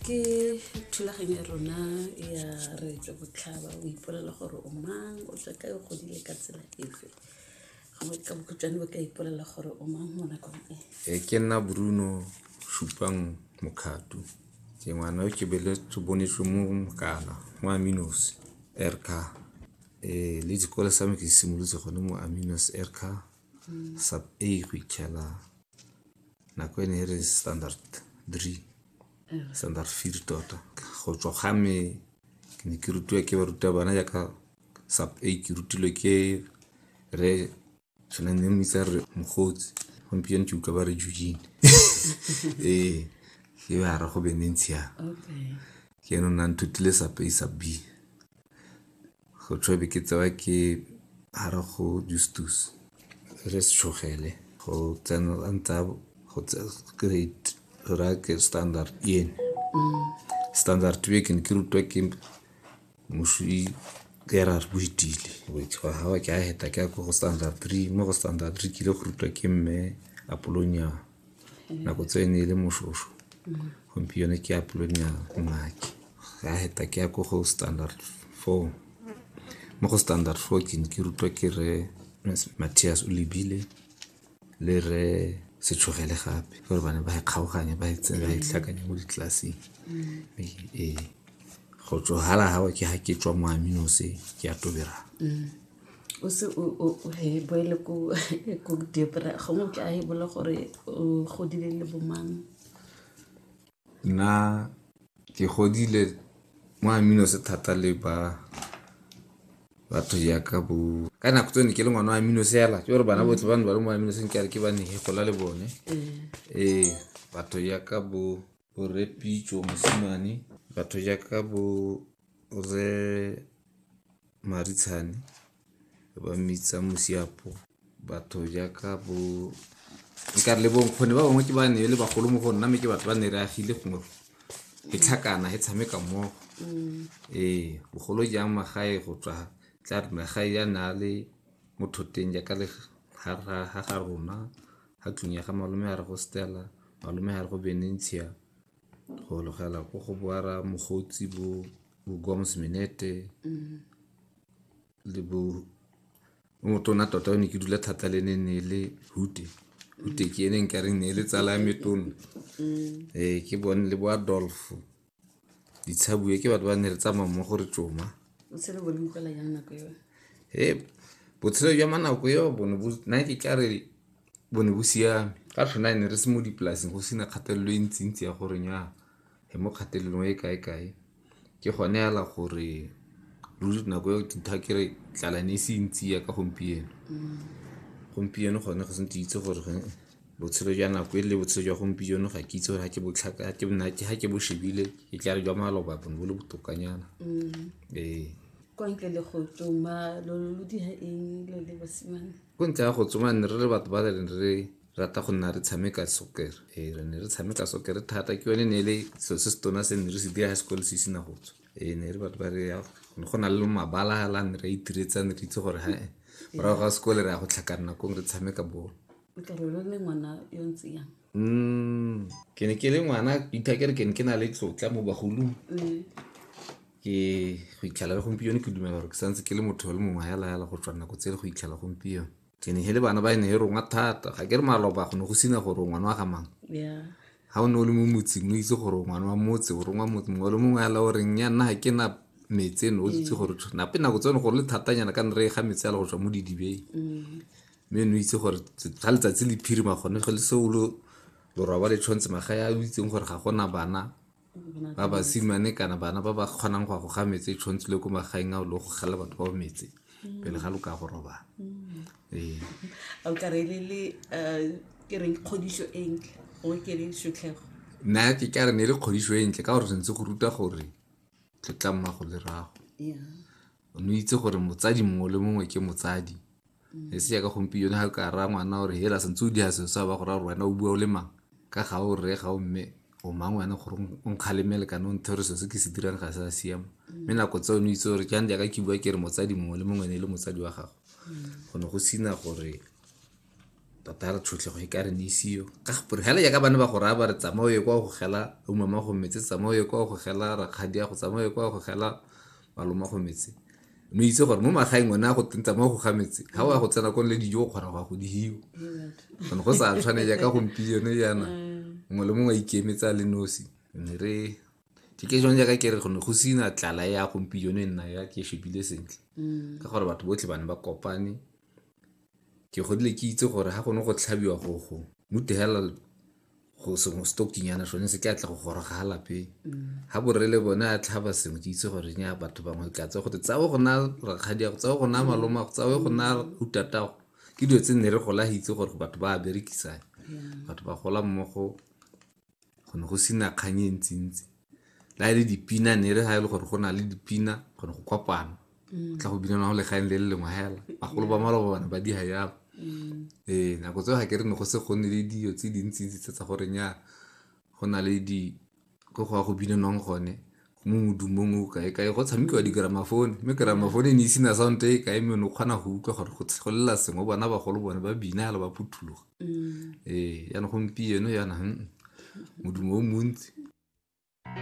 ke thulaganyo ya rona ya reetse botlhaba o ipolela gore o mang o tswa kae o godile ka tsela efe gongwe ka bokhutshwane bo ka ipolela gore o mang mo nakong e e ke nna bruno supang mokgato ke ngwana o ke beletse bonetswe mo mokana mo aminos erka um le dikole sa me ke simolotse gone mo aminos erka sub a go ikgela nako ene e re standard three standard feed tota go tswa ga me ke ne ke rutiwa ke baruta bana jaaka sub a ke rutilwe ke re sone ne mmitsa re mogotsi gompieno ke utlwa ba re jujine ee ke ba ra go bementshiang ke eno nna nthutile sub a sub b Go tšhobe ke tsewa ke hara go justus re se tšhogele go tsena a ntsa go grade ra ke standard ene mm. standard be ke ne ke rutwa ke moswi kera re boitile ga wa ke a heta ke ya ko go standard three mo go standard three ke ile go rutwa ke mme apolonyana nako tse ne e le moshosho gompieno ke ya polonia mmake ya heta ke ya ko go standard four mo go standard four ke ne ke rutwa ke re matthias o lebile le re setshogele gape gore bane ba e kgaoganye ba e ba e tlhakanye mo ditlelaseng ee go tsogala gago ke ga ke tswa mo aminose ke ya tobera o se o boele ko ko diopera gongwe ke a e bola gore o godile le bomang nna ke godile mo amino se thata le ba batho jaaka bo ka nako tse ne ke le ngwana wa amino seela ke gore bana botlhe ba ne ba le mo amino seng ke a re ke ba ne gola le bone ee batho jaaka bo borepitso mosimane batho jaaka bo re marutshane ba mmitsa mosiapo batho jaaka bo nkare le bonkgone ba bangwe ke ba ne le bagolo mo go nna mme ke batho ba ne re agile gongwe e tlhakana e tshameka mmogo mm. ee bogolo jang magae go tswa tla re magae ya na le motho teng jaaka le ga ga rona ga tlong ya ga malome ya re go stela malome ya re go benentia go logela ko go boara mogotsi bo bo goms minete le bo o motona tota o ne ke dula thata le ne ne le hute hute ke ene nka reng ne le tsala ya metona ee ke bone le bo adolfo ditshabue ke batho ba ne re tsamaya mmogo re tsoma o tshele bone mogela jang nako eo e botshelo jwa manako eo bone bo nna ke tla re bo ne bo siame ka tlhona ne re se mo dipolaseng go sena kgatelelo e ntsintsi ya gore nya e mo kgatelelong e kae-kae ke gone fela gore ruri nako eo tintha kere tlala ne e se ntsi ya ka gompieno gompieno gone go sentse itse gore botshelo jwa nako e le botshelo jwa gompieno ga ke itse gore ga ke bo shebile e tla re jwa maloba bone bo le botokanyana ee kwa ntle le go tsoma lo lo dira eng lo le basimane ko ntle ya go tsoma ne re le batho ba le re rata go nna re tshameka soccer ee re ne re tshameka soccer thata ke yone ne e le selo se se tona se ne re se dira high school se isina go tswa ee ne re batho ba re ne go na le mabala la ne re a itiretsang ne re itse gore ha morago ga sekole re ya go tlhakana kong re tshameka bolo o tla re o le ngwana yo ntse yang Mm, ke ne ke le ngwana ithakere ke ne ke na le tlotla mo bagolong mm. ke go itlhela le gompieno ke dumela gore ke santse ke le motho le mongwe ya laela go tswa nako tse le go itlhela gompieno ke ne le bana ba e ne e rongwa thata ga ke re maloba go ne go sena gore ngwana wa ga mang ga o ne o le mo motseng o itse gore ngwana wa motse o rongwa motse mongwe le mongwe ala goreng ya nna ga ke na metse eno o itse mm. gore nape nako tsone gore le thatanyana ka ne re e ga metse ala go tswa mo didibeng mm. mme no itse gore ga letsatsi le phirima gone ge le seo lo lorwaba le tshwanetse magae a o itseng gore ga gona bana ba basimane kana bana ba ba kgonang go a go ga metse e tshwanetse le ko magaeng a o le go gala batho ba metse pele ga lo ka go robala ee o ka re le le eh, ke reng kgodiso e ntle o ke le setlhego nna ke ka re ne e le kgodiso e ntle ka gore sentse go ruta gore tlotlang mago le rago ya o ne o itse gore motsadi mongwe le mongwe ke motsadi e se jaaka gompieno ga ka raya ngwana gore hela sentse o dira selo sa ba go raya gore wena o bua o le mang ka ga o rre ga o mme o mang wena gore o nkgalemele kana o nthe gore selo se ke se dirang ga se a siama mme nako tse o ne o itse gore jang jaaka ke bua ke re motsadi mongwe le mongwe ne e le motsadi wa gago go ne go sina gore tota re tshotlhego e ka re neisiyo ka gore fela jaaka bane ba go raya ba re tsamaye kwa go gela umama go metse tsamaye kwa go gela rakgadi ya go tsamaye kwa go gela maloma go metse no itse gore mo magaeng one a go tentsa mo go ga metse ga o ya go tsena kone le dijo o kgona go ya go dihiwa gone go sa tshwane jaaka gompieno jaana mm. mongwe le mongwe a ikemetse a le nosi ne re ke ke jone jaaka ke re gone go sena tlala ya gompieno e nna ya ke shebile sentle mm. ka gore batho botlhe ba ne ba kopane ke godile ke itse gore ga gone go tlhabiwa gogo mute hela go sengwe stokinyana sone se ke a tla go goroga ga lape ga borele bone a tlhaba sengwe ke itse gore nya batho bangwe tla tse gote tsawe go na rakgadi yago tsawe go na maloma go tsawe go na utatago ke dilo tse nne re gola itse gore batho ba berekisang batho ba gola mmogo go ne go sena kgang e ntsi-ntsi la e le dipina ne re ga e le gore go na le dipina go ne go kopana mm. tla go binana go lekgang le le lengwe hela bagolo ba maloba bana ba diga yalo mm. ee nako tseo ga ke re ne go se go nne le dio tse dintsi-ntsi tse tsa gore nya go na le di ko go ya go binanwang gone mo modumong o kae kae go tshamekiwa di-gramafone mme gramafone e ne isena sound e kae mme o ne o kgona go utlwa gore go go lela sengwe bona bagolo bone ba bina ala ba phuthuloga ee yana gompieno yana modumo o montsi